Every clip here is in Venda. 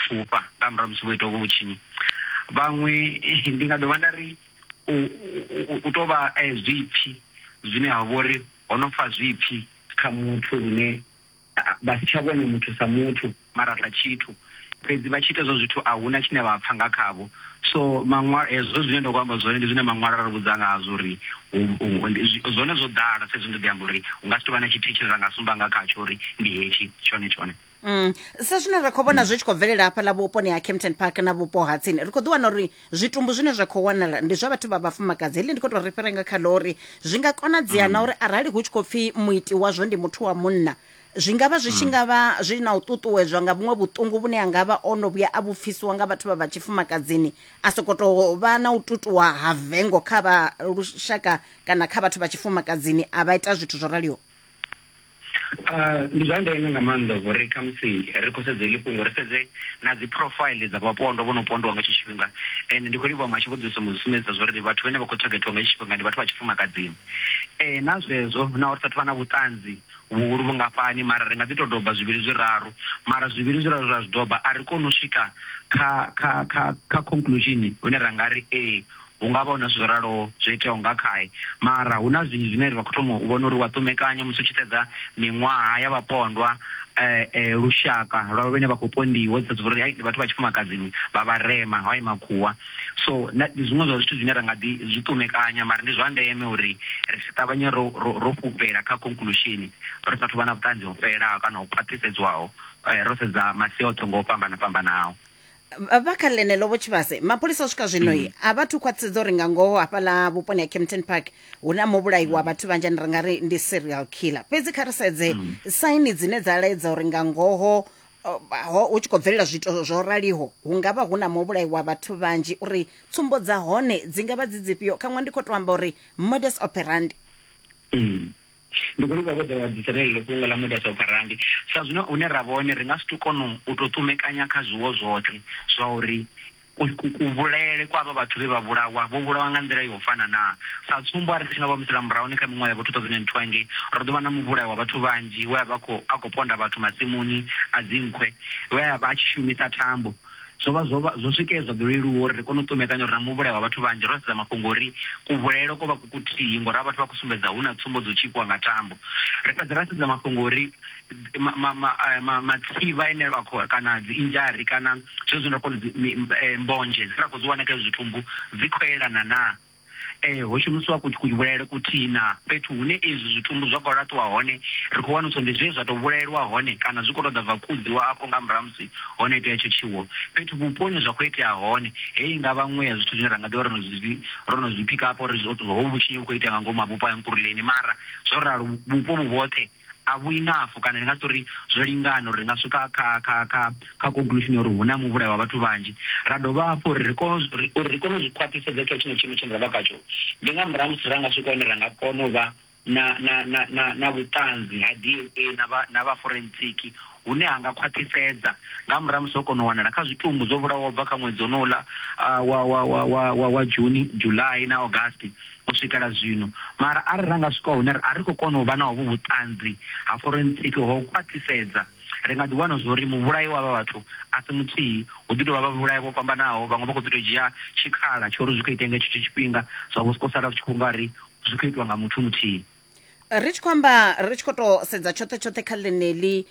pfufha nga murahu ha musi vho ita hovhu vhutshinyi. Vhaṅwe ndi nga dovha nda ri u, u, u tou vha eh, zwipfi zwine ha vha uri ho no fa zwipfi kha muthu lune vha si tsha vhona muthu sa muthu mara sa tshithu fhedzi vha tshi ita zwo zwithu a huna tshine vha pfa nga khavho so maṅwalo hezwo zwine ndo amba zwone ndi zwine maṅwalo a ri vhudza ngazwo uri zwone zwo ḓala sa izwi ndo ḓi amba uri hu nga si tou vha na tshithihi tshine ra nga sumba nga khatsho uri ndi hetshi tshone tshone Mm. sa zwine ra khou vhona zwi tshi khou bvelela hafha ḽa vhuponi ha campton park na vhupo ha tsini ri khou ḓi wana uri zwitumbu zwine zwa khou wanala ndi zwa vhathu vha vhafumakadzi heḽi ndi khou tou ri fhira nga kha ḽo uri zwi nga konadzea na uri arali hu tshi khou pfhi muiti wazwo ndi muthu wa munna zwi nga vha zwi tshi nga vha zwi na u ṱuṱuwedzwa nga vhuṅwe vhuṱungu vhune a nga vha o no vhuya a vhupfisiwa nga vhathu vha vha tshifumakadzini a sokou tou vha na u tutuwa ha vengo kha vha lushaka kana kha vhathu vha tshifumakadzini a vha ita zwithu zwo raliho Ndi zwa ndeme nga maanḓa uri khamusi ri khou sedza heḽi fhungo ri sedze na dzi profile dza vhapondwa vho no pondiwa nga hetsho tshifhinga, ende ndi khou livhuwa Muhasho vho ḓisa mu sumbedzisa zwa uri vhathu vhane vha khou thagethiwa nga hetsho tshifhinga ndi vhathu vha tshifumakadzini. Ee, na zwezwo naho ri sa athu vha na vhuṱanzi vhuhulu vhungafhani mara ri nga ḓi tou doba zwivhili zwiraru, mara zwivhili zwiraru ra zwi doba a ri koni u swika kha kha kha kha conclusion hune ra nga ri ee Hu nga vha hu na zwithu zwo raloho zwo iteaho nga khae, mara hu na zwinzhi zwine ra khou thoma u vhona uri u a ṱumekanya musi u tshi sedza miṅwaha ya vhapondwa, lushaka lwa vhane vha khou pondiwa, u sedza uri ndi vhathu vha tshifumakadzini, vha vharema, hai makhuwa. So, ndi zwiṅwe zwa zwithu zwine ra nga ḓi zwi ṱumekanya, mara ndi zwa ndeme uri ri si ṱavhanye ro fhufhela kha conclusion ri sa athu u vha na vhuṱanzi ho fhelelaho kana ho khwaṱhisedzwaho ro sedza masia oṱhe nga u fhambana-fhambana hao. Vha- vha kha ḽeneḽo vho tshivhase mapholisa u swika zwino i a vha thu khwaṱhisedza uri nga ngoho hafhaḽa vhuponi ha campton park hu na muvhulayi wa vhathu vhanzhi ane ri nga ri ndi serial killer fhedzi kha ri sedze saini dzine dza laedza uri nga ngoho uh, ho- hu tshi khou bvelela zwiito zwo raliho hu nga vha hu na muvhulayi wa vhathu vhanzhi uri tsumbo dza hone dzi nga vha dzi dzifhio khaṅwe ndi khou tou amba uri modus operandi Mm. Ndi khou livhuwa vho ḓaho vha ḓisa ḽeneḽo fhungo ḽa Muda Sa U Pfa Rambi. Sa zwino hune ra vha hone, ri nga si tou kona u tou ṱumekanya kha zwiwo zwoṱhe zwa uri kuvhulaele kwa avha vhathu vhe vha vhulawa vho vhulawa nga nḓila ya u fana naa. Sa tsumbo, arali ri tshi nga vha humisela murahuni kha miṅwaha ya vho-2002 hangei, ro ḓo vha na muvhulayo wa vhathu vhanzhi we a vha a khou ponda vhathu masimuni a dzinkhwe, we a vha a tshi shumisa thambo, zwo vha zwo vha zwo swikea zwa ḓo leluwa uri ri kone u ṱumekanya uri na muvhulayo wa vhathu vhanzhi ro sedza mafhungo uri kuvhulaelo ko vha ku kuthihi ngori a vhathu vha khou sumbedza hu na tsumbo dzo tshipiwa nga tambo ri fhedza ra sedza mafhungo uri eh, matsivha ene a khou kana dzi injari kana zwezwi ndo kona eh, mbonzhe dzi ra khou dzi wana kha zwithumbu dzi khou elana naa Ee, ho shumisiwa kuvhulaele kuthihi na fhethu hune izwi zwitumbu zwa khou laṱiwa hone, ri khou wanulusa uri ndi zwe zwa tou vhulaelwa hone kana zwi khou tou ḓa bva kudziwa afho nga murahu ha musi ho no itea hetsho tshiwo. Fhethu vhupo hune zwa khou itea hone, heyi i nga vha nngwe ya zwithu zwine ra nga ḓi vha ro no zwi ro no zwi phikapa uri hovhu vhutshinyi vhu khou itea nga ngomu ha vhupo ha Nkululeni. Mara zwo ralo, vhupo vhu vhoṱhe, a vhu inafo kana ndi nga si tori zwo lingana uri ri nga swika kha kha kha kha conclusion ya uri hu na muvhulayo wa vhathu vhanzhi ra dovha hafhu uri ri kone uri ri kone u zwi khwaṱhisedza kha tshino tshiimo tshine ra vha khatsho ndi nga murahu musi ra nga swika hone ra nga kona u vha na na na na na vhuṱanzi ha DNA na vha na vha forensic hune ha nga khwaṱhisedza nga murahu musi ho kona u wanala kha zwitumbu zwo vhulawaho bva kha ṅwedzi onouḽa wa wa wa wa wa June July na August u swikela zwino. Mara arali ra nga swika hune a ri khou kona u vha na hovhu vhuṱanzi ha forensiki ho u khwaṱhisedza, ri nga ḓi wana zwo ri muvhulayi wa avha vhathu a si muthihi, hu ḓi tou vha vhavhulayi vho fhambanaho, vhaṅwe vha khou ḓi tou dzhia tshikhala tsha uri zwi khou itea nga tshenetsho tshifhinga zwa vho sokou sala zwi tshi khou nga ri zwi khou itwa nga muthu muthihi. ri tshi khou amba ri tshi khou to sedza tshoṱhe tshoṱhe kha ḽeneḽi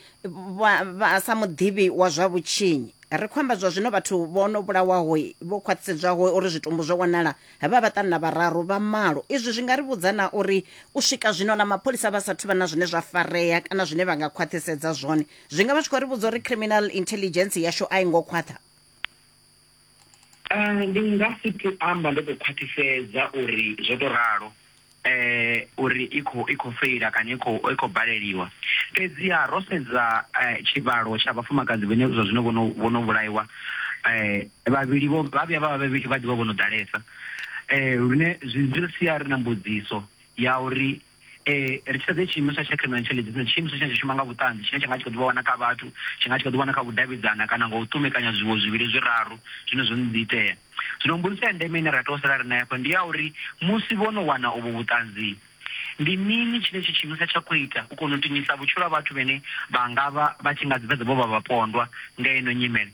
vha sa muḓivhi wa zwa vhutshinyi ri khou amba zwa zwino vhathu vho no vhulawaho vho khwaṱhisedzwaho uri zwitumbu zwo wanala vha vhaṱanu na vhararu vha malo izwi zwi nga ri vhudza na uri u swika zwino na mapholisa vha sathu vha na zwine zwa farea kana zwine vha nga khwaṱhisedza zwone zwi nga vha zwi khou ri vhudza uri criminal intelligence yashu a i ngo khwaṱha Ndi nga si tou amba ndo tou khwaṱhisedza uri zwo tou ralo uri i khou i khou feila kana i khou i khou baleliwa. Fhedziha ro sedza tshivhalo tsha vhafumakadzi vhane zwa zwino vho no vho no vhulaiwa vhavhili vho vha vhuya vha vha vhavhili vha ḓivha vho no ḓalesa lune zwi ri sia ri na mbudziso ya uri Eh, ri tshi sedze tshiimo tsha tsha criminal intelligence ndi tshiimiswa tshine tsha shuma nga vhuṱanzi tshine tsha nga tshi kha ḓi vha wana kha vhathu tshi nga tshi kha ḓi wana kha vhudavhidzana kana nga u ṱumekanya zwiwo zwivhili zwiraru zwine zwo no ḓi itea zwino mbudziso ya ndeme ine ra tea u sala ri nayo hafha ndi ya uri musi vho no wana uvho vhuṱanzi ndi mini tshine tshi tshiimiswa tsha khou ita u kona u tinyisa vhutshilo ha vhathu vhene vha nga vha vha tshi nga dzi fhedza vho vha vhapondwa nga ino nyimele